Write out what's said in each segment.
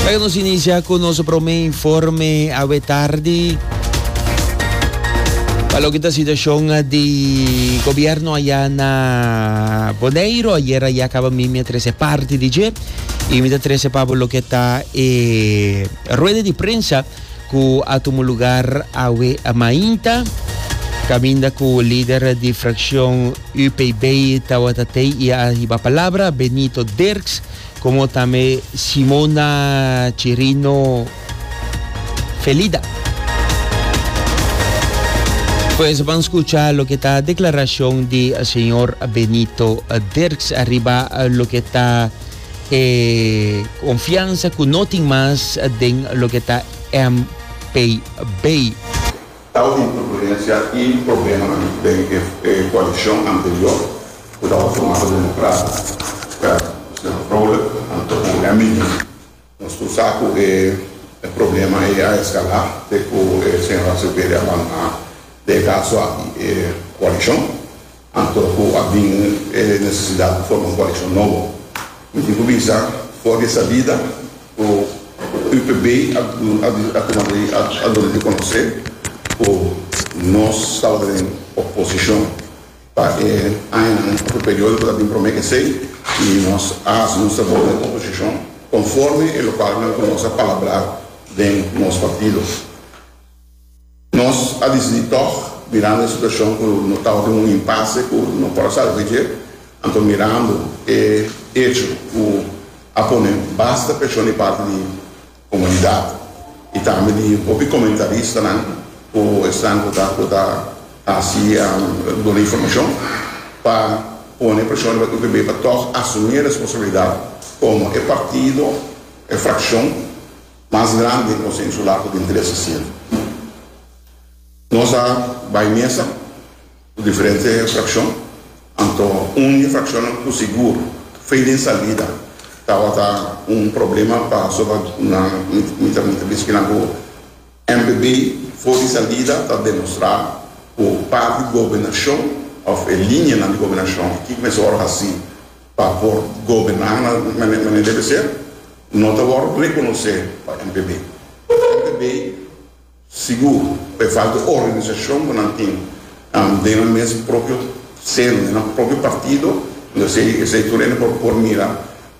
Oca nos inicia cu nos prome informe awe tardi. Pa lo que ta situacion di gobierno allá na Bonaire, ayer allá acaba mi me trece parte di je. Y mi ta trece pa lo que ta eh, rueda di prensa. cu a tumu lugar awe mainta, caminda cu lider di fraccion UPB tawata tey y a hiba palabra, Benito Dirks, como tambe Simona Chirino Felida. Pues ban scucha loke ta declaracion di señor Benito Dirks ariba loke ta. E konfiansa ku no tin mas den loke ta MPB. Tabata un turbulensia i problemanan den e koalishon anterior ku tabata formá pa Demokrata, Kern, Señor Vrolijk, anto ku Hemminghe. Nos tur sa ku e problema ei a eskalá te ku e Señor Azevedo a bandoná den e kaso aki e koalishon. Anto ku a bin e nesesidat pa forma un koaleshon nobo. Mi tin ku bisa, for di e salida ku UPB a tuma di a duna di konosé ku nos staba ta den oposishon pa e añanan òf e periodo ku ta bin promé esei i nos a hasi nos trabou den oposishon konforme e lokalnan ku nos a palabrá den nos partido. Nos a disidi tòg, mirando e situashon ku no tabata den un impase ku no por a salve dje, anto mirando e echo ku a pone basta preshon di parti di komunidat i tambe di hopi komentaristanan ku esnan ku ta ku ta hasi duna informashon pa pone preshon riba UPB pa tòg asumí e responsabilidat komo e partido, e frakshon. mas grandi nos a insulá ku tin trese sienta. Nos a bai mesa ku diferente frakshon, anto un di e frakshonnan ku sigur fe den salida tabata un problema pasobra nan mi ta bisti kinan ku NPB for di salida ta demostrá ku parti gobernashon òf e linianan di gobernashon a kiko mester ora hasi. pa por goberná na manera ku debe ser, no ta wòrdu rekonosé pa NPB. NPB sigur ku e falta di organisashon ku nan tin den nan mes propio seno, den nan propio partido, esei esei tur e no por mira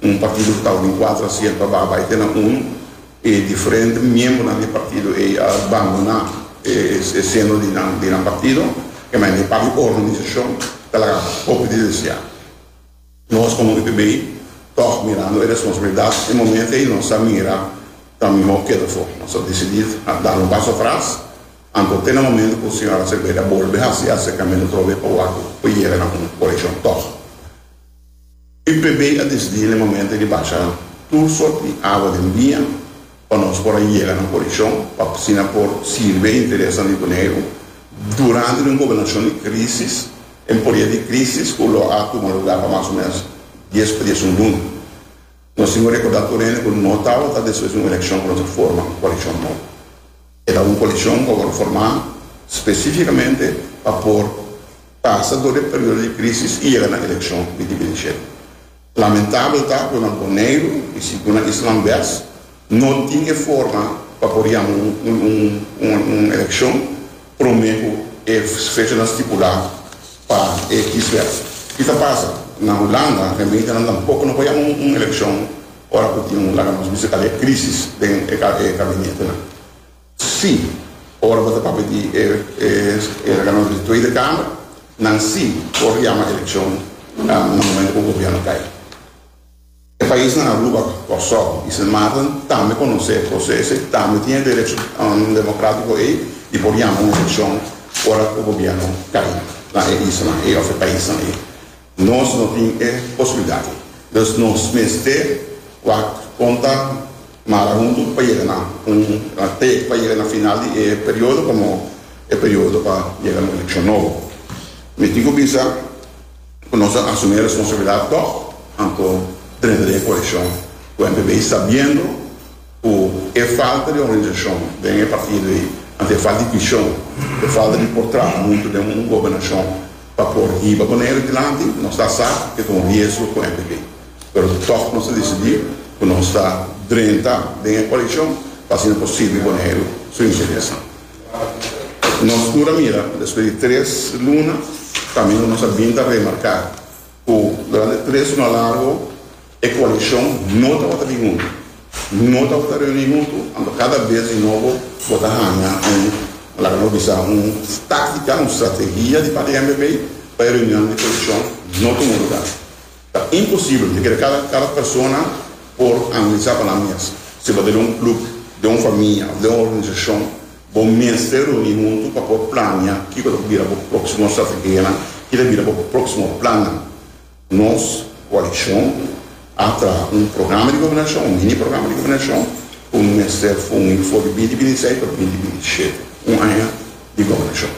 un partido ku ta den kuater asiento a baha bai te na unu, e diferente miembronan di e partido ei a bandoná e e seno di nan partido, kemey e parti di organisashon ta laga hopi di deseá. Nos komo UTB tòg mirando e responsabilidat e momento ei nos a mira ta mihó keda for. Nos a desidí da un paso atras anto te na momento ku Señora Sepeda bolbe hasi e aserkamentu trobe pa wak ku por yega na un korekshon tòg. UTB a desidí na e momento ei di basha tur sort di awa den bia. pa nos por a yega na posishon pa asina por sirbi e interesnan di Boneiru durante di un gobernashon di krísis en podia di krísis ku lo a tuma lugá pa mas o ménos dies pa diesun luna. Nos tin ku rekordá tur hende ku no tabata despues di un elekshon ku nos a forma un koalishon nobo. E ta un koalishon ku a wòrdu formá spesífikamente pa por pasa dor di e periodo di krísis i yega na elekshon di dimentido. Lamentabel ta ku nan Boneiru i si ku nan Island West no tin e forma pa por yama un elekshon promé ku e fechanan stipulá pa e kieswet. Ki ta pasa? Na Hulanda gementenan tampoko no por yama un elekshon ora ku tin un laga nos bisa kal'e krisis den e gabinetenan. Sí, ora bo ta papia di e reglamentu di Tweede Kamer, nan sí por yama elekshon na momentu ku gobièrnu kai. E paisnan Aruba, Kòrsou i Sint Maarten tambe konosé e proseso i tambe tin e derecho demokratiko ei di por yama un elekshon ora ku gobièrnu kai na e islanan ei òf e paisnan ei. Nos no tin e posibilidad. Dus nos mester wak con ta mara huntu pa yega na un te pa yega na final di e periodo como e periodo pa yega na un eleccion nobo. Mi tin cu bisa cu nos a asumi e responsabilidad tog, anto drenta di e coalition cu NPB sabiendo, Ku e falta di organisashon den e partido ei, anto e falta di vishon, e falta di por traha huntu den un gobernashon pa por hiba Boneiru dilanti, nos ta sa ke ta un riesgo ku MPP. Pero tòg nos a disidí ku nos ta drenta den e koalishon pa asina por sirbi Boneiru su interesnan. Nos tur a mira, despues di tres luna, tambe nos a bin ta remarká ku durante tres luna largu, E coalición no tabata bin hunto, no tabata reuni hunto, anto cada bes di nobo bo ta hanga un, laga nos bisa, un táctica, un strategia di parti mpp pa e reunion di coalición no tuma lugar. Ta imposible, mi kere cada, cada persona por analiza pa nan mes. Si bo ta den un club, den un famia of den un organización, bo mester reuni hunto pa por planea kico ta por bira bo próximo strategianan, ki ta bira bo próximo plannan. Nos koalishon a traha un programa di gobernashon, un mini programa di gobernashon, ku un mester fungi for di binti binti seis pa binti binti shete, un aña di gobernashon.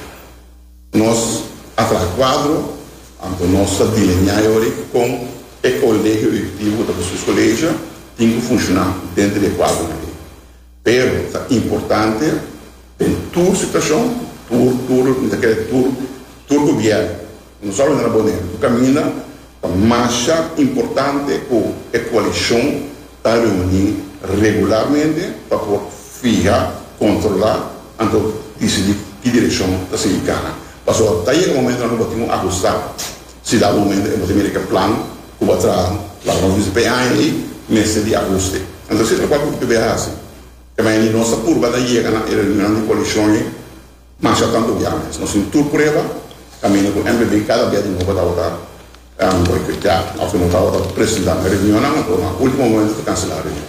Nos a traha kuadro, anto nos ta dilineá yori kon e kolegio eekutivo ku ta por sus kolegio tin ku funshoná dentro di e kuadronan ei. Pero ta importante den tur situacion, tur, tur, mi ta kere tur, tur gobierno, no solamente na Boneiru, cu caminda ta masha importante cu e coalicion ta reuni regularmente pa por fiha, controla, anto dicidi ki direccion ta sigui cana. Pasobra ta yega momento nan lo batin un ajustado, si dado momento e lo ta mira cu e plan, Ku bo a traha, laga nos bisa pa e aña ei, mester di ahuste. Anto siempre kualke kuto bo a hasi, e maya di nos ta purba ta yega na e reunion di koalishon ei masha tantu biames. Nos tin tur prueba kaminda ku NBB kada bia di nobo tabata boikoteá òf ku no tabata presentá na e reunionnan òf ku no a último momento ta kanselá e reunion.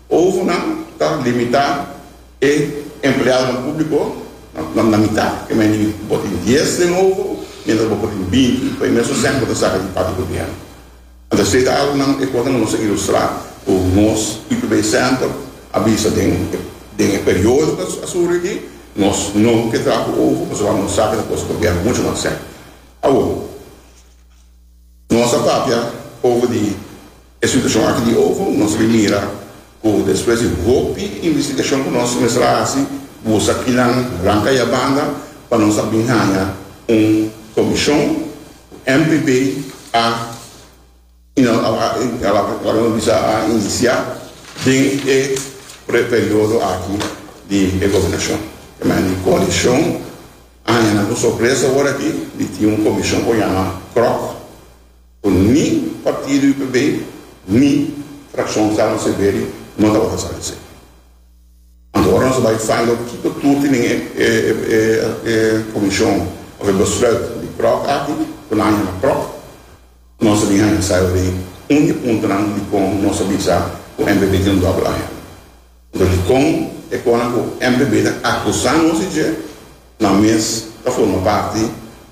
Ovonan ta limitá e empleadonan públiko na mitá. Kua mester di bo tin dies den ovo miéntras bo por tin binti pa e mesun sèn ku bo ta saka di papia gobièrnu. Anto esei ta algu nan e kos nan ku nos a ilustrá ku nos IPB Center a bisa den e periodo ku a suru aki nos no ke traha ku ovo pasobra amo nos saka di kos gobièrnu muchu mas sèrio. Awor, nos ta papia ovo di E situashon aki di Oval nos a bin mira ku despues di hopi investigashon ku nos mester a hasi busa kinan ranka ya banda pa nos a bin haña un komishon ku MPB a inisiá den e preperiodo aki di e gobernashon. E maya di koalishon a haña nan ku sorpresa orakí di tin un komishon ku a yama Krok. cu ni partido UPB ni fraccion Carlo Severi no tabata sa di esey. Anto ora nos a bay find out kico tur tin den e comision of e besluit di proc aki cu nan a yama proc, nos a bin haña sa awe un di puntonan dicon nos a bisa cu NBB tin un double agenda. Pero dikon e kona ku MPB ta akusá nos di dje? Nan mes ta forma parti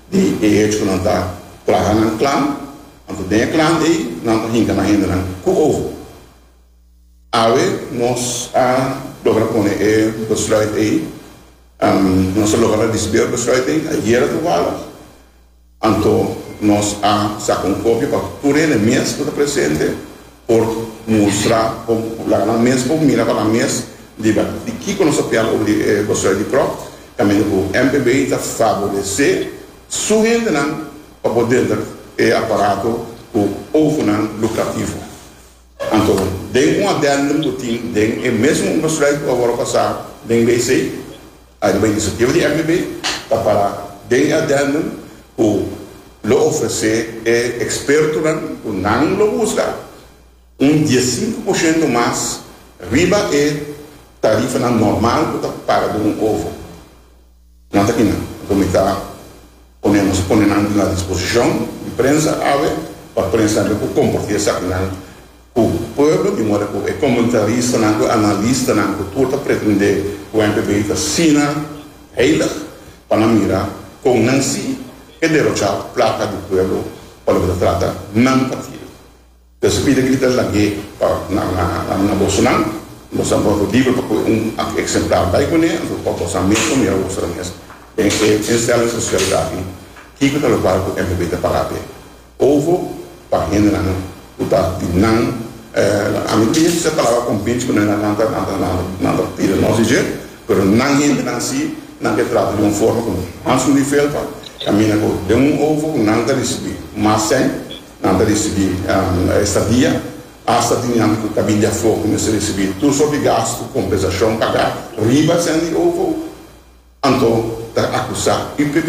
di e hecho ku nan ta plaha nan klan, anto den e klan ei nan ta hinka nan hendenan ku ojo. Awe nos a logra pone e besluit ei, nos a logra risibí e besluit ei ayera toevallig. Anto nos a saka un kopia pa tur hende mes ku ta presente por mustra kon ku laga mes por mira pa nan mes riba di kiko nos ta pian over di Boshuai di Kròk tambe ku MPB ta favoresé su hendenan pa por denter e aparato ku ofonan lukrativo. Anto, den un addendum cu tin den e mesun un besluit cu a worde pasa den ley sey, ariba e iniciativa di MBB, ta para den e addendum cu lo ofrece e expertonan cu nan lo busca un diescinco por ciento mas riba e tarifanan normal cu ta paga den un ovo. Nan ta kinan ku mi ta pone nos a pone nan na disposishon di prensa awe pa prensa tambe por kompartí esakinan ku pueblo di moda ku e komentaristanan ku e analistanan ku tur ta pretendé ku NPB ta asina heilig pa nan mira kon nan si ke derochá plaka di pueblo pa loke ta trata nan partido. Nos a pidi cu ta lag'é pa nan na bosonan. Nos a boso libro pa cu un exemplar bay cu ne, anto pa boso a mes o mira boso a mes den e instelling social daki kico ta lo para cu NPB ta paga p'e. Ovo pa hendenan cu ta di nan, ami tin di usa palabra convince cu nan nan ta tira nos di dje, pero nan hendenan si, nan ke trata di un forma cu Hans Louis Velpa camina cu den un ovo cu nan ta ricibi mas cen, Nan ta risibí estadia asta dinanan ku ta bin di afó ku mester risibí tur sort di gastu kompensashon pagá riba esei di OVO. Anto ta akusá UPB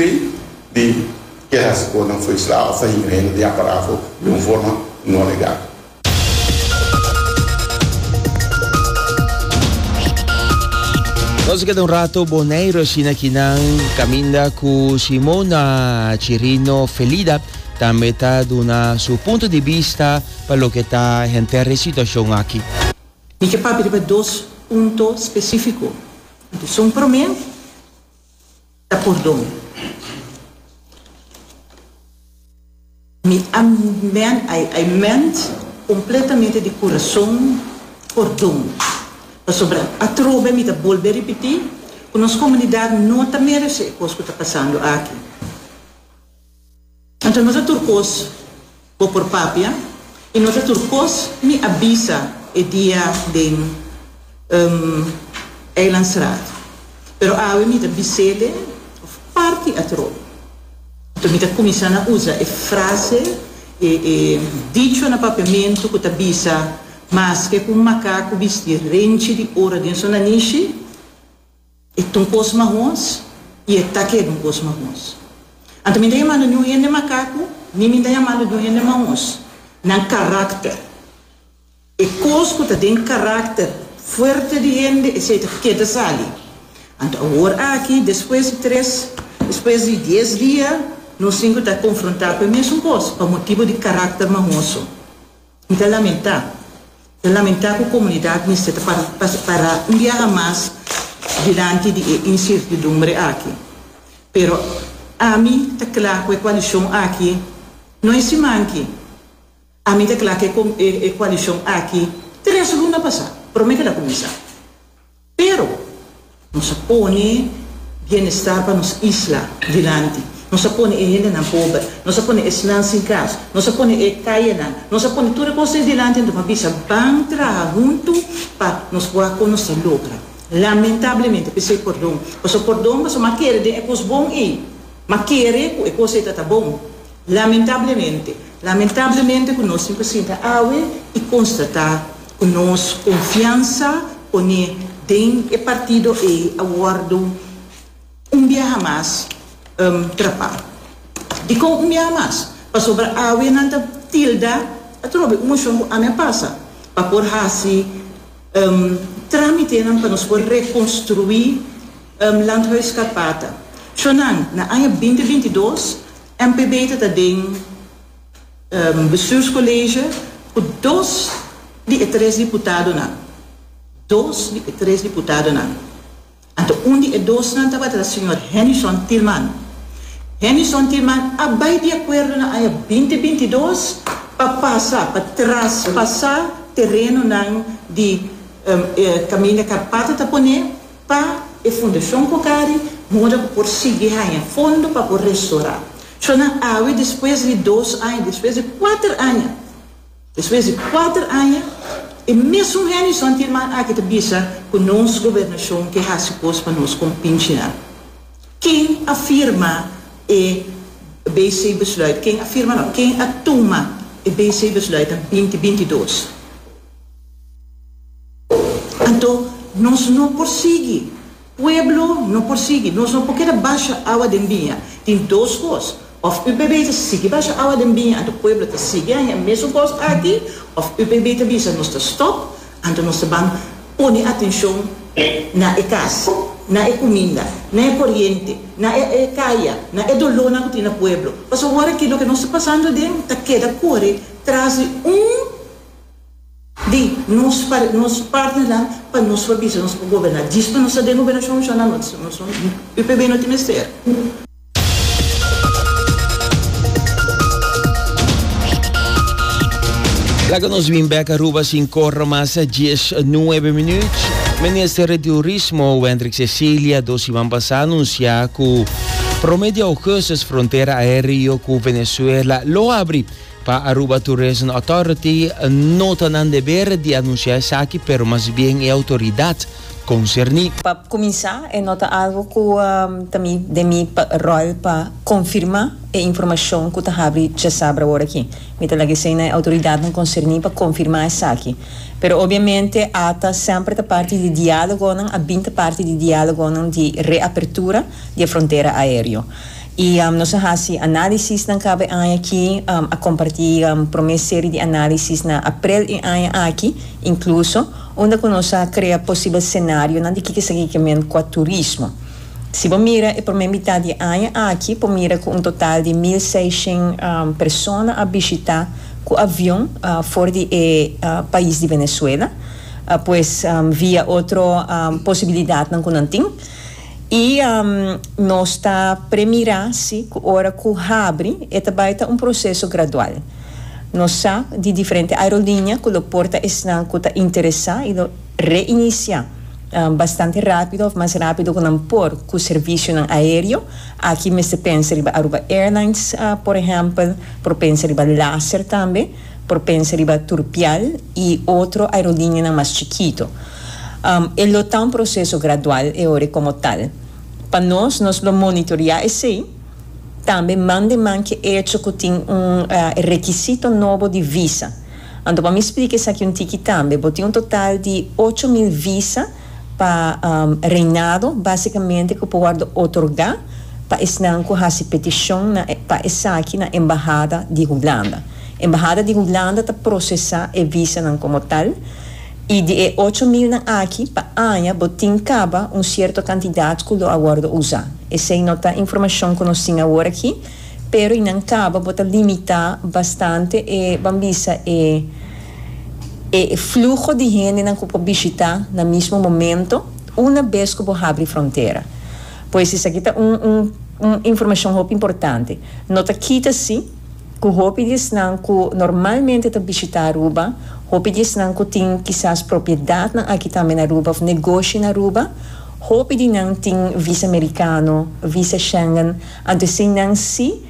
di ke hasi kos nan foi sla òf ta hinga hende di aparafo den un forma no legal. Nos a keda un rato Boneiru asina kinan kaminda ku Simona Chirino Felida. tambe ta duna su punto di bista pa loke ta henter e situacion aki. Mi ke papia riba dos punto specifico. Atención prome ta pordon. Mi I ment completamente di curazon pordon pasobra atrobe mi ta bolbe ripiti cu nos comunidad no ta merece e cos cu ta pasando aki. Anto nos a tur kos bo por papia i nos a tur kos mi a bisa e dia den um Eilandstraat. Pero awe mi ta bis'ele òf parti atrò. Anto mi ta kuminsá na usa e frase, e e dicho na papiamentu ku ta bisa, Maske ku un makaku bisti rentchi di ora den su nanishi, E ta un kos mahons i e ta keda un kos mahons. Anto mi ta yamando niun hende makaku, ni mi ta yamando niun hende mahons. Nan karakter. E kos ku ta den karakter fuerte di hende, esei ta keda sali. Anto awor aki, despues di tres, despues di dies dia, nos sinku ta konfrontá ku e mesun kos pa motibu di karakter mahon su. Mi ta lamentá. Ta lamentá ku komunidat mester ta pará un biaha mas dilanti di e insertidumbre aki. Pero ami ta kla ku e koalishon aki no e siman ki. Ami ta kla ku e koalishon aki tres luna pasá promé ke el a kuminsá. Pero, nos a pone bienestar pa nos isla dilanti. Nos a pone e hendenan pober. Nos a pone esnan sin kas. Nos a pone e kayenan. Nos a pone tur e kosnan dilanti. Anto m'a bisa, Ban traha huntu pa nos wak kon nos ta logra. Lamentablemente, p'esei pordon. Pasobra pordon, pasobra m'a kere den e kos bon ei. M'a kere ku e kos ei ta ta bon. Lamentablemente, lamentablemente ku nos tin por sinta awe i konstatá Cu nos confiansa pone den e partido ey a wordo un biaha mas trapa. Dicon un biaha mas? Pasobra awe nan ta tilda atrobe un mocion cu ami a pasa pa por haci tramitenan pa nos por reconstrui Landhuis Karpata. Sho nan, na aña binti binti dos, NPB ta ta den. Bestuurscollege cu dos di e tres diputadonan, dos di e tres diputadonan, anto un di e dosnan tabata ta señor Hennyson Tillman. Hennyson Tillman a bay di acuerdo na aña binti binti dos pa pasa, pa traspasa terenonan di Caminda Carpato ta pone, Pa e Fundacion Cocari moda cu por sigui haña fondo pa por restora. Sho nan awe despues di dos aña, despues di kuater aña, despues di kuater aña e mesun henison tin man aki ta bisa cu nos Gobernacion ke haci cos pa nos con pinchinan. Ken a firma e BC Besluit, ken a firma no, ken a tuma e BC Besluit den binti binti dos? Anto nos no por sigui, pueblo no por sigui, nos no por keda basha awa den biña. Tin dos kos, of UPB ta sigui basha awa den biña anto pueblo ta sigui a hen mesun kos aki, of UPB ta bisa nos ta stop, anto nos ta ban pone atenshon na e kas, na e kuminda, na e koriente, na e e kaya, na e dolónan ku tin na pueblo. Pasobra wòrda aki loke nos ta pasando den ta keda kore tras di un. di nos nos partnernan pa nos por bisa nos por goberna djis pa nos ta den gobernacion nos a nan nos nos son UPB no tin mester. Laga nos bin bek Aruba sin corro mas dies nuebe minuut. Minister di Turismo Wendrick Cecilia dos siman pasa anuncia cu prome di augustus frontera aereo cu Venezuela lo abri. Pa Aruba Tourism Authority no ta nan deber di anuncia esaki pero mas bien e autoridad concerni. Pa cuminsa e no ta algo cu ta mi den mi rol pa confirma e informacion cu ta habri djasabra ora aki. Mi ta laga esey na e autoridadnan concerni pa confirma esaki. Pero obviamente ata semper ta parti di dialogonan, a bin ta parti di dialogonan di reapertura di e frontera aereo. Y nos a haci analisisnan cabe aña aki, a comparti prome serie di analisis na aprel e aña aki incluso, unda cu nos a crea posibel scenarionan di kiko esaki ke men cua turismo. Si bo mira e prome mitad di aña aki por mira cu un total di mil seishent persona a bishita cu avion for di e pais di Venezuela, pues via otro posibilidadnan cu nan tin. I nos ta premira si cu ora cu habri e ta bay ta un proceso gradual. Nos sa di diferente aerolinea cu lo porta esnan cu ta interesa y lo reinicia bastante rapido of mas rapido cu nan por cu servicionan aereo. Aki mester pensa riba Aruba Airlines, por ehempel, por pensa riba Laser tambe. Por pensa riba Turpial y otro aerolinianan mas chikito. E lo ta un proceso gradual e ora como tal. Pa nos, nos lo monitorea esey, tambe man den man ke echo cu tin un requisito nobo di visa. Anto pa mi splica esaki un tiki tambe, bo tin un total di ocho mil visa, pa reinado básicamente cu por wordo otorgá pa esnan cu haci peticion na pa esaki na embahada di Hulanda. Embahada di Hulanda ta procesá e visanan como tal y di e ocho milnan aki pa aña bo tin caba un cierto cantidad cu lo a wordo usá. Esey no ta informacion cu nos tin awor aki. Pero i nan caba bo ta limita bastante e ban bisa e e fluho di hendenan cu por bishita na mismo momento una bes cu bo habri frontera. Pues esaki ta un un un informacion hopi importante. No ta kita si cu hopi di esnan cu normalmente ta bishita Aruba, hopi di esnan cu tin kisas propiedadnan aki tambe na Aruba of negoshi na Aruba, hopi di nan tin visa mericano, visa Schengen, Anto esin nan si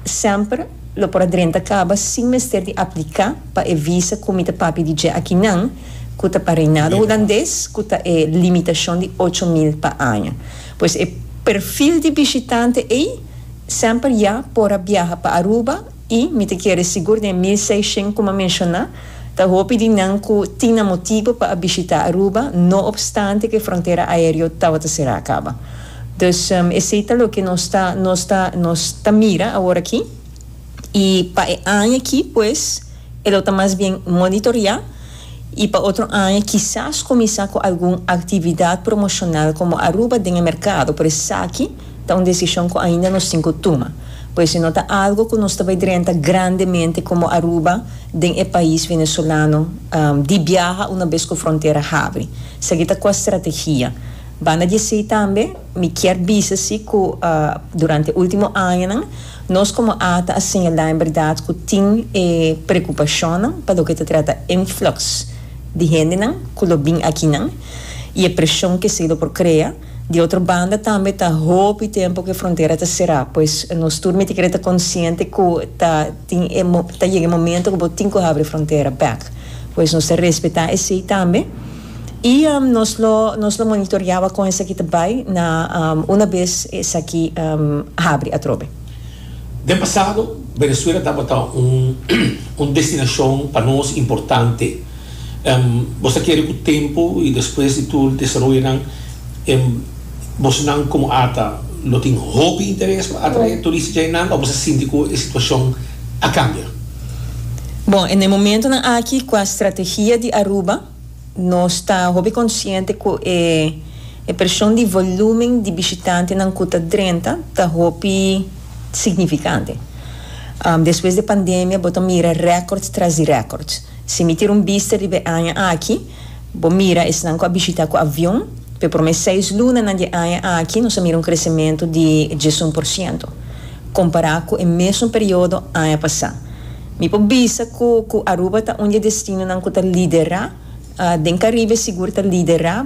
semper lo por a drenta caba sin mester di aplica pa e visa cu mi ta papia di dje aki nan cu ta pa Reinado Hulandes cu ta e limitacion di ocho mil pa aña. Pues e perfil di bishitante ey semper ya por a biaha pa Aruba. I mi ta kere sigur den mil seishent ku mi a menshoná, ta hopi di nan ku tin nan motibu pa a bishitá Aruba no opstante ku e frontera aéreo tabata será kaba. Dus esei ta loke nos ta nos ta nos ta mira aworakí i pa e aña akí pues e lo ta mas bien monitoriá. y pa otro aña kisas cuminsa cu algun actividad promocional como Aruba den e mercado, por esaki ta un decision cu ainda nos tin cu tuma, por esi no ta algo cu nos ta bay drenta grandemente como Aruba den e pais Venezolano di biaha una bes cu frontera habri. Esaki ta cua strategia. Banda di esey tambe mi kier bisa si cu durante e ultimo añanan Nos komo ata a señalá en berdad ku tin e prekupashonnan pa loke ta trata influx di hendenan ku lo bin akinan i e preshon ku esei lo por krea. Di otro banda tambe ta hopi tempu ku e frontera ta será, pues nos tur mi ta kere ta konsiente ku ta tin e ta yega e momento ku bo tin ku habri e frontera bèk, pues nos ta respetá esei tambe. I nos lo nos lo monitoriaba kon esaki ta bai na una bes esaki habri atrobe. Den pasado, Venezuela tabata un destinashon pa nos importante. Bo sa kere ku tempu i despues di tur desaroyonan bosnan komo Ata lo tin hopi interes pa atrae turista dje nan o bo sa sinti ku e situashon a kambia? Bon, na e momentunan aki ku a strategia di Aruba. Nos ta hopi konsiente ku e e preshon di volúmen di bishitantenan ku ta drenta ta hopi signifikante. Despues di e pandemia bo ta mira rèkòrds tras di rèkòrds. Si mi tira un bista riba e aña aki, bo mira esnan ku a bishitá ku avion, pa e promé seis lunanan di e aña aki nos a mira un kresementu di diesun por siento, kompará ku e mesun periodo aña pasá. Mi por bisa cu cu Aruba ta un di e destinonan cu ta lidera. Den Caribe sigur ta lidera,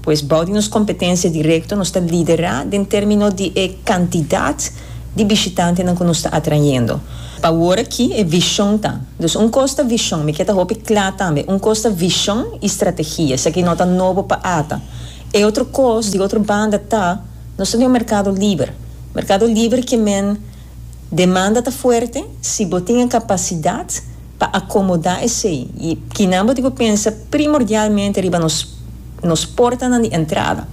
pues bao di nos competencia directo nos ta lidera den termino di e cantidad di bishitantenan cu nos ta atrayendo. Pa awor aki e vision ta, dus un cos ta vision, mi kier ta hopi cla tambe, un cos ta vision y strategia, esaki no ta nobo pa ata. E otro cos di otro banda ta, nos ta den un mercado liber, mercado liber kier men Demanda ta fuerte si bo tin e capacidad pa acomoda esey y kinan bo tin cu pensa primordialmente riba nos nos portanan di entrada.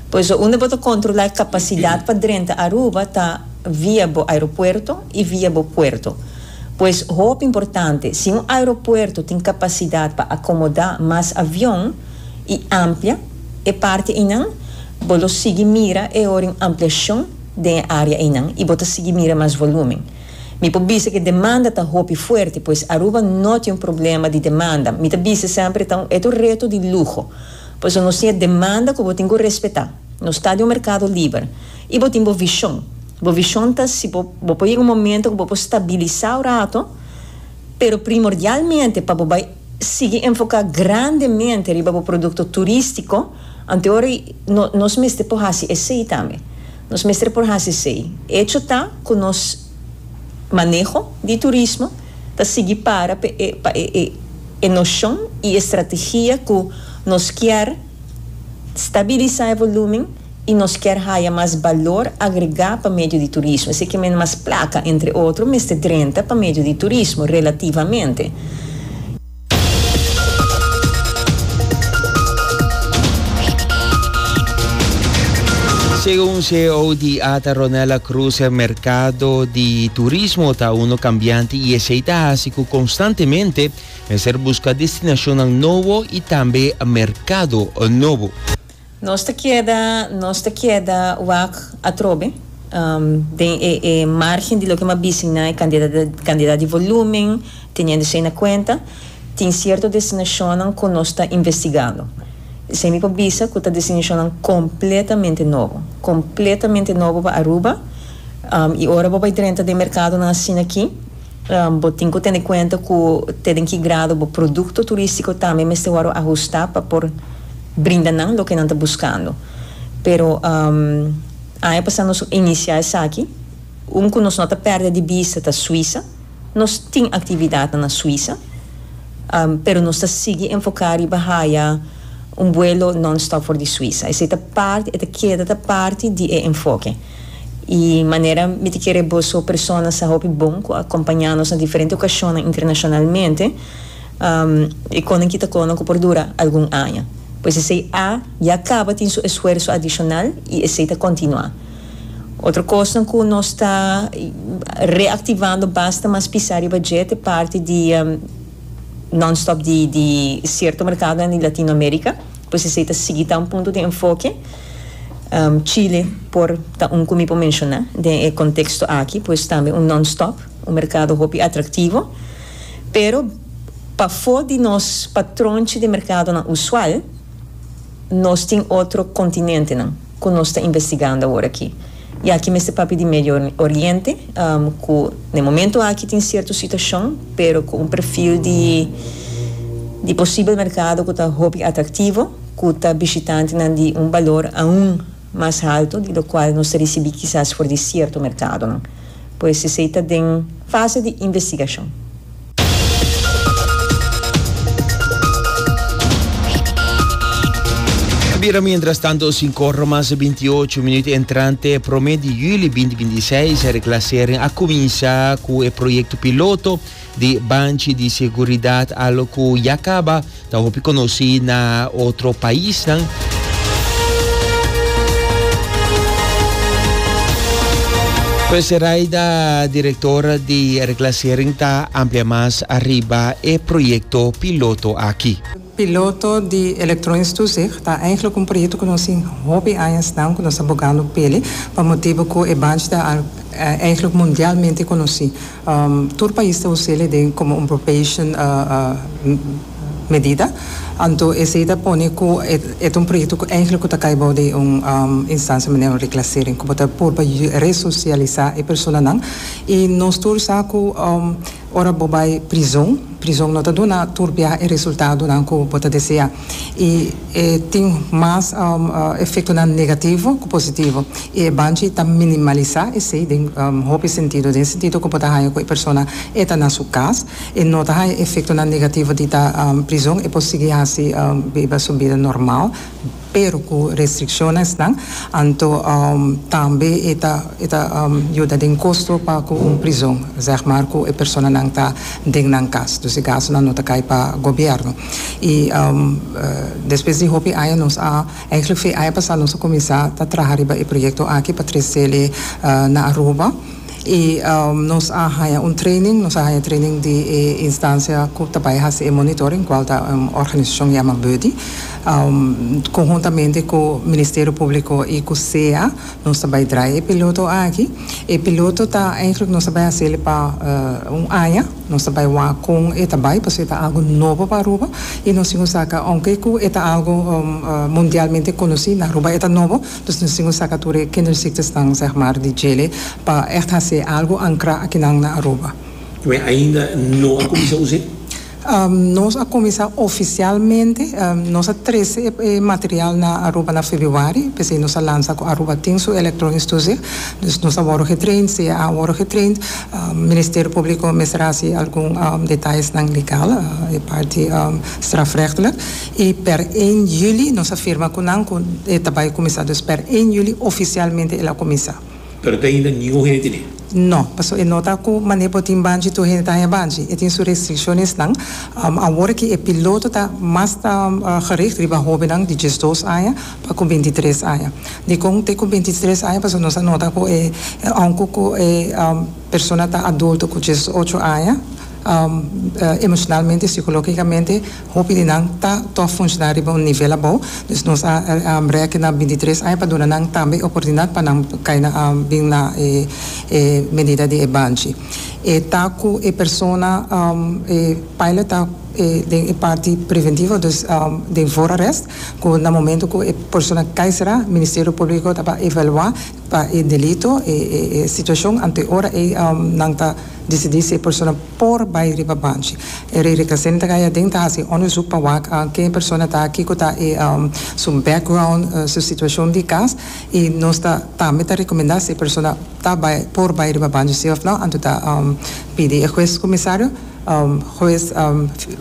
Por eso unda bo ta controla e capacidad pa drenta Aruba ta via bo aeropuerto y via bo puerto. Pues hopi importante si un aeropuerto tin capacidad pa acomoda mas avion y amplia e parte eynan bo lo sigui mira e ora y un ampliacion. den e área einan i bo ta sigui mira mas volúmen. Mi por bisa ku e demanda ta hopi fuerte, pues Aruba no tin un problema di demanda. Mi ta bisa semper e ta un eto reto di luho. Paso nos tin e demanda ku bo tin ku respetá. Nos ta di un merkado liber. I bo tin bo vishon. Bo vishon ta si bo bo por yega un momento ku bo por stabilisá un rato, pero primordialmente pa bo bai. sigui enfoká grandemente riba bo produkto turístiko, anteori nos mester por hasi esei tambe. Nos mester por hasi esei. Echo ta ku nos maneho di turismo ta sigui para pa e noshon i e strategia ku nos kier. Stabilisa e volúmen i nos kier haya mas balor agregá pa medio di turismo. Esei ke mende mas plaka, entre otro, mester drenta pa medio di turismo, relativamente. Segun ceo di ata Ronella Cruz e merkado di turismo ta uno kambianti i esei ta hasi ku konstantemente Mester busca destinacionnan nobo y tambe mercado nobo. Nos ta keda nos ta keda wak atrobe den e e margen di loke mi a bisin na e cantidad cantidad di volumen, teniendo esey na cuenta tin cierto destinacionnan cu nos ta investigando. Esey mi por bisa cu ta destinacionnan completamente nobo, completamente nobo pa Aruba y ora bo bay drenta den mercadonan asina aki, Bo tin ku tene kuenta ku te den ki grado bo produkto turístiko tambe mester wòrdu ahustá pa por brinda nan loke nan ta buskando. Pero aña pasá nos inisiá esaki. Un ku nos no ta pèrdè di bista ta Suisa. Nos tin aktividatnan na Suisa, pero nos ta sigui enfoká riba haya un buelo non-stop for di Suisa. Esei ta parti, e ta keda ta parti di e enfoke. i manera mi ta kere boso personanan hopi bon ku a kompañá nos na diferente okashonnan internashonalmente, e konan kita konan ku por dura algun aña. Pues esei a ya kaba tin su esfuerso adishonal i esei ta kontinuá. Otro kosnan ku nos ta reaktivando basta mas pisá riba dje ta e parti di non-stop di sierto merkadonan di Latinoamérika, pues esei ta sigui ta un punto di enfoke. Chile por ta un cu mi por menciona den e contexto aki pues tambe un non-stop, un mercado hopi atractivo, pero pafo di nos patronchi di mercadonan usual nos tin otro continentenan cu nos ta investigando awor aki. I aki mester papia di Medio Oriente, ku n'e momentu aki tin sierto situashon, pero ku un perfil di di posibel merkado ku ta hopi atraktivo, ku ta bishitantenan di un balor aun mas haltu di lokual nos ta risibí kisas for di sierto merkadonan. Pues esei ta den fase di investigashon. Ta bira mientras tanto sin corro mas de 28 minuut entrante prome di juli 2026 e reclassering a cuminsa cu e proyecto piloto di banchi di seguridad alo cu ya caba Ta hopi conoci na otro paisnan. Pues Zeraida director di reclassering ta amplia mas arriba e proyecto piloto aki. Piloto di elektronisch toezicht ta eigenlijk un proyecto cu nos tin hopi añasnan cu nos ta bogando peli pa motibo cu e banchi ta eigenlijk mundialmente conoci. Tur pais ta us'é le den como un probation medida, anto esei ta pone cu e ta un proyecto cu eigenlijk cu ta cay bou di un instancia manera un reclassering cu bo ta purba resocialisa e personanan y nos tur sa cu ora bo bay prizon, prizon no ta duna tur biaha e resultadonan cu bo ta desea. y e tin mas efectonan negativo cu positivo y e banchi ta minimalisa esey den hopi sentido, den sentido cu bo ta haya cu e persona e ta na su cas, e no ta haya efectonan negativo di ta prizon, e por sigui hasi biba su bida normal pero cu restriccionesnan, anto tambe e ta e ta yuda den costo pa cu un prizon zeg maar cu e personanan ta den nan cas, dus e gastonan no ta cay pa gobierno. y despues di hopi aña nos a eigenlijk fue aña pasa nos a cuminsa ta traha riba e proyecto aki pa trecele na Aruba y nos a haña un training nos a haña training di e instancia cu ta bay haci e monitoring cual ta un organisacion yama BUDI conhuntamente cu Ministerio Publico y cu sea nos ta bay draai e piloto aki e piloto ta eigenlijk nos a bay hacele pa un aña. Nos ta bai wak kon e ta bai pasobra e ta algo nobo pa Aruba y nos tin ku saca aunke ku e ta algo mundialmente conoci na Aruba e ta nobo dus nos tin ku saca tur e kinderziektersnan zeg maar di djele pa echt haci algo ancra akinan na Aruba. Y mi ainda no a cuminsa uze? Nos a cuminsa oficialmente, nos a trece e material na Aruba na Febuari, p'esey nos a lansa cu Aruba tin su electronics toezicht, dus nos a worde getraind, sea a worde getraind, Ministerio Públiko mester hasi algun detayesnan legal e parti strafrechtelijk i per én juli nos a firma ku nan ku e ta bai kuminsá. Dus per én juli ofisialmente el a kuminsá. Pero te ainda ningún hende ne. No, paso e no ta ku manera bo tin banchi tur hende ta haña banchi. E tin su restrikshonsnan. Awor aki e piloto ta mas gericht riba hóbennan di diesdos aña. pa ku binti tres aña. Dikon te ku binti tres aña pasobra nos a nota ku e aunke ku e persona ta adulto ku dies ocho aña emoshonalmente sikologikamente hopi di nan ta tòg funshoná riba un nivel abou dus nos a rekena binti tres aña pa duna nan tambe e oportunidat pa nan kai na bin na e medida di e banchi. E ta ku e persona e paila ta den e parti preventivo dus den voorarrest cu na momento cu e persona cay sera, Ministerio Publico ta pa evalua pa e delito e e situacion anto e ora ey nan ta dicidi si e persona por bay riba banchi. E rey Recassendi ta cay aden ta haci e onderzoek pa wak ken e persona ta, kico ta e su background, su situacion di cas y nos ta tambe ta recomenda si e persona ta bay por bay riba banchi si of no anto ta pidi e Hues Comisario. Hues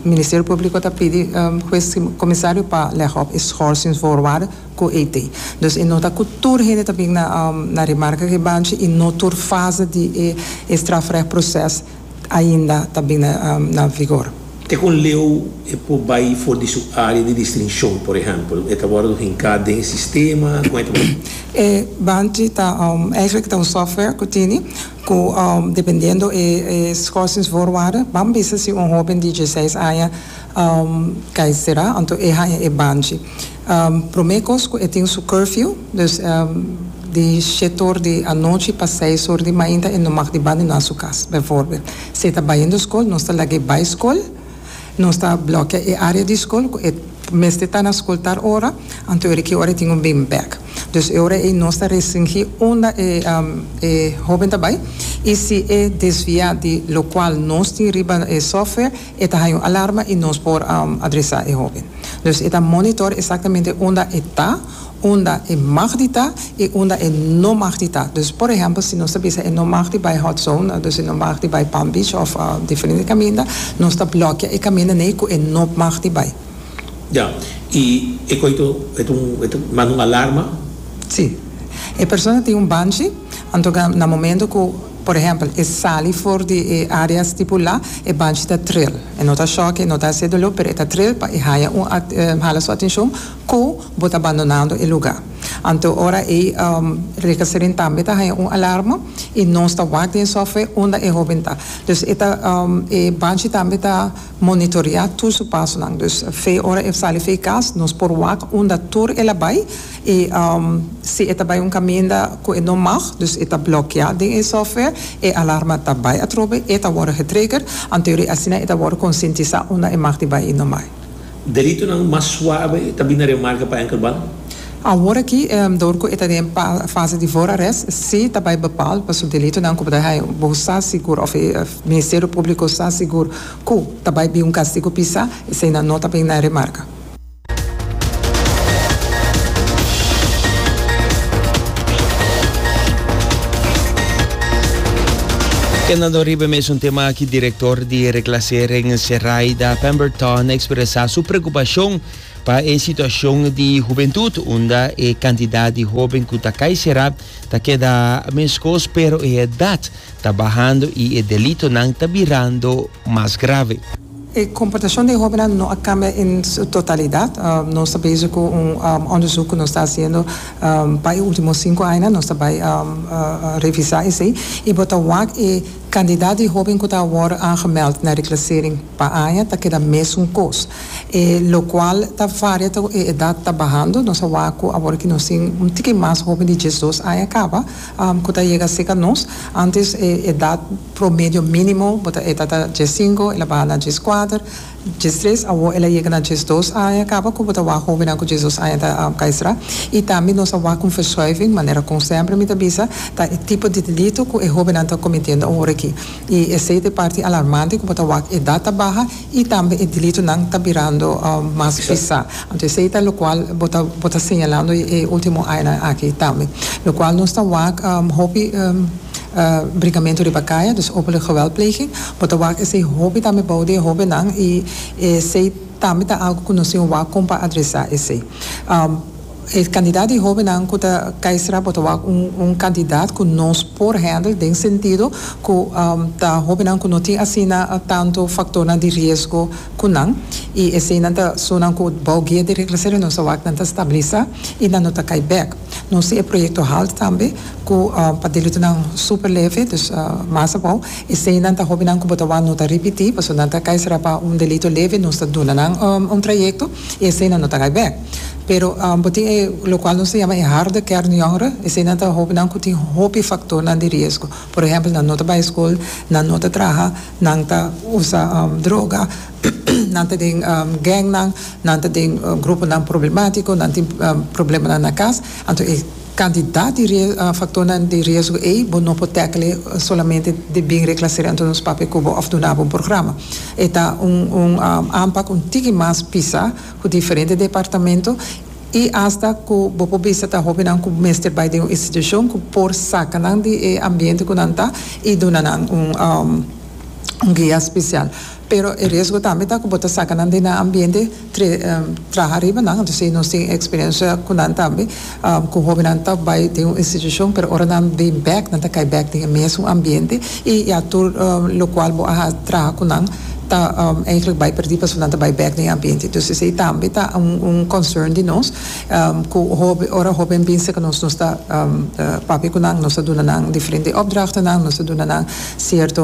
Ministerio Públiko ta pidi Hues Komisario pa lèg òf e schòrsing voorwaarde ku e te. Dus e nota ku tur hende ta bin na remarka ku e banchi i no tur fase di e strafrèg proses ainda ta bin na vigor. Te ku un leu e por bai for di su área di distinshon, por ehèmpel, e ta wòrdu hinká den e sistema? Kon e ta wòrdu? E banchi ta èiklèk ta un software ku tini. Ku dependiendo e schorsings voorwaarden ban bisa si un hoben di dieseis aña kai sera anto e haña e banchi. Prome kos ku e tin su curfew, dus di shete or di anochi pa seis or di mainta e no mag di banda, e no a su kas. Bijvoorbeeld, si e ta bayendo skol, nos ta laga e bai skol. Nos ta blokia e área di skol ku e mester ta na skol tal ora, anto ora ki ora e tin un been bag. Dus e ora ei nos ta restringí unda e e hóben ta bai i si e desviá di lokual nos tin riba e software e ta haña un alarma i nos por adresá e hóben. Dus e ta monitor esaktamente unda e ta. unda e mag di ta i unda e no mag di ta. Dus por ehèmpel si nos ta bisa e no mag di bai hot zone, dus e no mag di bai Palm Beach òf diferente kaminda, nos ta blòkia e kaminda nei ku e no mag di bai. Ya, i e koito e ta un e ta manda un alarma? Sí. E persona tin un banchi, anto ka na momento ku por ehèmpel e sali for di e área stipulá, e banchi ta tril. E no ta shòk, e no ta hasi e doló, pero e ta tril pa e haña un hala su atenshon. Cu bo ta bandonando e lugar. Anto ora ey Rekeserin tambe ta haya un alarma y nos ta wak den software unda e hoben ta. Dus e ta e banchi tambe ta monitorea tur su pasonan. Dus fe ora e sali fe cas nos por wak unda tur el a bay y si e ta bay un caminda cu e no mag dus e ta blokea den e software e alarma ta bay atrobe e ta worde getrigger anto ora asina e ta worde conscientisa unda e mag di bay y no bay. Deritonan mas suabe ta bini na remarca pa Enkelband. Awor aki, dor cu e ta den fase di voorarrest, si ta bay bepaal pa su delitonan cu bo ta haya, bo sa sigur of e Ministerio Publico sa sigur cu ta bay bin un castigo pisa, eseinan no ta bini na remarca. Kenda do riba e mesun tema aki, director. di Reclassering Seraida Pemberton expresa su preocupacion pa e situacion di hubentud unda e cantidad di hoben cu ta cay cera ta keda mescos pero e edad ta bahando y e delitonan ta birando mas grave. E comportacion den hobennan no a cambia en su totalidad. Nos ta bezig cu un onderzoek cu nos ta haciendo pa e ultimo cinco añanan, nos ta bay revisa esey y bo ta wak e. Candidat di hoben cu ta awor aangemeld na reclasering pa aña ta keda mesun cos, e locual ta varia ta cu e edad ta bahando. Nos a wak cu awor ki nos tin un tiki mas hoben di diesdos aña caba cu ta yega seca nos. Antes e edad promedio minimo bo ta eta ta diescinco, el a baha na diescuater. Djes tres, Awo el a yega na djes dos aña, kaba ku bo ta wak hóbennan ku djes dos aña ta kaistra. I tambe nos a wak un verschuiving, manera kon sèmpre mi ta bisa, ta e tipo di delitu ku e hóbennan ta komitendo awor aki. I esei ta e parti alarmante ku bo ta wak edat ta baha i tambe e delitunan ta birando mas bisá. Anto esei ta lokual bo ta bo ta señalando e último añanan aki tambe. Lokual nos ta wak hopi. brigamentu riba kaya, dus openlijk geweldpleging. Bo ta wak esei hopi tambe bou di e hobennan i esei tambe ta algu ku nos tin wak kon pa adresá esei. E kandidat di hobennan ku ta kai stra bo ta wak un un kandidat ku nos por hèndel den sentido ku ta hobennan ku no tin asina tantu faktornan di riesgo ku nan i eseinan ta sunan ku bou guia di regresering nos ta wak nan ta stabilisá i nan no ta kai bèk. Nos tin e proyekto halt tambe ku pa delutonan super leve dus mas abou eseinan ta hobinan ku bo ta wou no ta ripití pasobra nan ta kai sera pa un delito leve nos ta duna nan un trayekto i eseinan no ta kai bèk pero bo tin e lokual nos ta yama e harde kern yongere eseinan ta hobinan ku tin hopi faktornan di riesgo por ehèmpel nan no ta bai skol nan no ta traha nan ta usa droga. Nan ta den gangnan, nan ta den gruponan problemátiko, nan tin problemanan na kas. Anto e kantidat di faktornan di riesgo ei bo no por tèkele solamente dje bin reklaseria anto nos papia ku bo òf duna bo un programa. E ta un un ampak un tiki mas pisa ku diferente departamento i asta ku bo por bisa ta hóbennan ku mester bai den un institushon ku por saka nan di e ambiente ku nan ta i duna nan un guia spesial. Pero e riesgo tambe ta ku bo ta saka nan den nan ambiente tre traha riba nan. Anto si nos tin eksperensia ku nan tambe ku hóbennan ta bai den un institushon pero ora nan bin bèk nan ta kai bèk den e mesun ambiente i ya tur lokual bo a traha ku nan ta eigentlik bai pèrdí pasobra nan ta bai bèk den e ambiente. Dus esei tambe ta un concern di nos ku hóben ora hóben bin serka nos nos ta papia ku nan nos ta duna nan diferente opdrachtennan nos ta duna nan sierto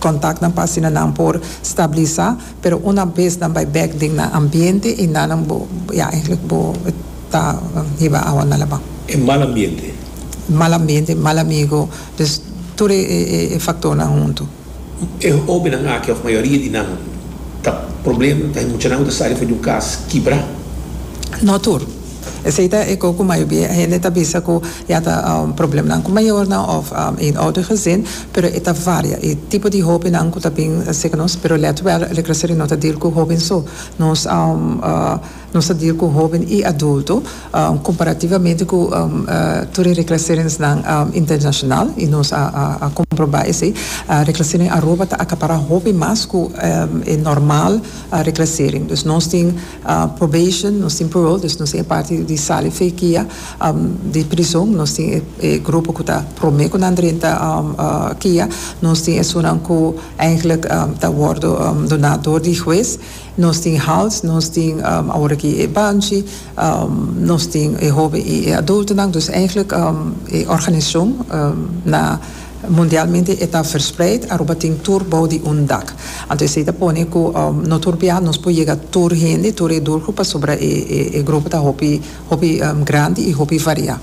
Contactnan pa asina nan por stabilisa, pero una bes nan bay bek den nan ambiente y nanan bo ya eigenlijk bo ta hiba awa na laban. E mal ambiente. Mal ambiente, mal amigo, dus tur e factornan hunto. E hobennan aki of mayoria di nan ta problem, ta hay muchanan cu ta sali for di un cas kibra. No tur. Esei ta e ko ku mayoria hende ta bisa ku ya ta problemnan ku mayornan òf eenoudig gezin, pero e ta varia. E tipo di hopinan ku ta bin seka nos, pero let wèl, Reclassering no ta dil ku hopi so. Nos nos ta dil ku hopi i adulto, komparativamente ku tur e reclaseringsnan internashonal, i nos a komprobá esei. Reclassering Aruba ta akapará hopi mas ku e normal reclassering. Dus nos tin. Probation, nos tin parole, dus nos tin e parti di sali fekia di prizon, nos tin e grupo ku ta prome ku nan drenta kia, nos tin esunnan ku eigenlik ta wordo duna dor di hues, nos tin house, nos tin awor aki e banchi, nos tin e hoben i e adultonan, dus eigenlik e organisashon na. Mundialmente e ta verspreid, Aruba tin tur bou di un dak. Anto esei ta pone ku no tur bia nos por yega tur hende, tur e durku pasobra e grupo ta hopi grandi i hopi variá.